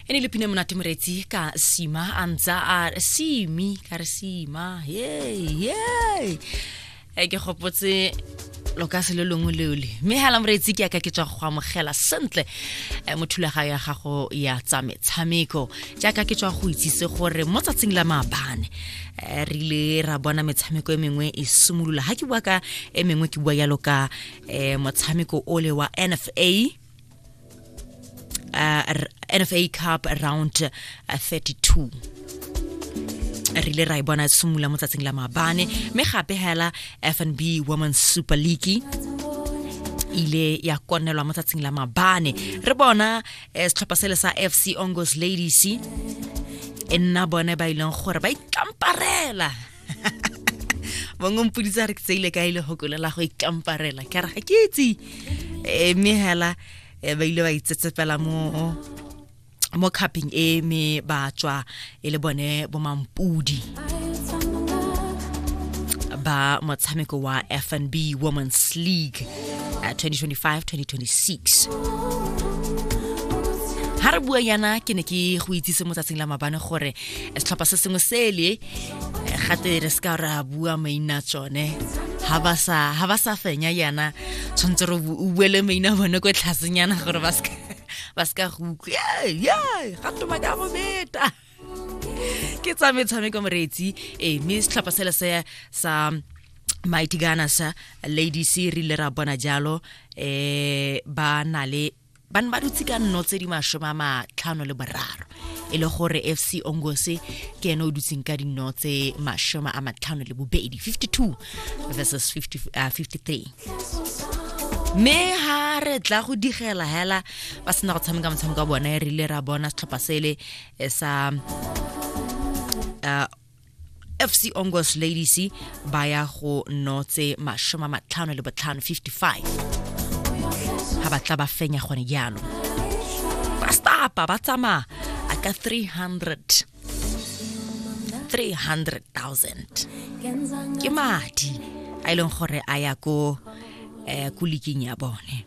e ne le pine monate moretsi ka sima a ntsa a simi ka re sima yey yey e ke gopotse lo ka se le longwe leo le mme hela moreetsi ke yaka ke tswa go amogela sentle eh, mo thulaga ya gago ya tsa metshameko jaaka ke tswa go itsise gore mo tsatsing la maabane eh, re ile ra bona metshameko e mengwe e simolola ga ke bua ka e mengwe ke bua yalo ka um motshameko ole wa nfa uh, NFA Cup round uh, 32 re ile ra e bona simolola mo tsatsing la maabane mme gape hela fnb women's super league ile ya konelwa mo tsatsing la mabane re bona eh, setlhopha sele sa fc ongos ladies e nna bone ba ileng gore ba ikamparela bongwe mpoditsa re ke tseile ka e le gokolo la go ikamparela ke re ga ke itse eh, mme hela eh, ba ile ba itsetsepela mo mo cupping e me ba tswa e le bone bo mampudi ba motshameko wa fnb women's league 2025-2026 eh, ha re bua yana ke ne ke go itsise mo tsatsing la mabane gore setlhopha se sengwe sele gate re se ka re a bua maina tsone ha ba sa fenya yana tshwanetse re o buele maina bone ko tlhasenyana gore ba se ka go utlwe gato ba ka go beta ke tsa metshameko moreetsi ee eh, mme setlhopha sele se sa mighty ganasa ladies re ile ra bona jalo um ba na le ba ne ba dutse ka nno tse di masome a matlhano le boraro e le gore fc ongose ke ene o dutseng ka dinno tse masome a matlhano le bobedi 52 versus 50, uh, 53 mme ha re tla go digela hela ba sena go tshameka motshameko wa bona e rile ra bona setlhopha sele eh, sa uh, FC Ongos Ladies ba ya go notse mashoma matlhano le botlhano 55 ha ba tla ba fenya gone jalo ba stapa ba tsamaya a ka 300 300,000 ke madi a e leng gore a ya ko eh, ko liking ya bone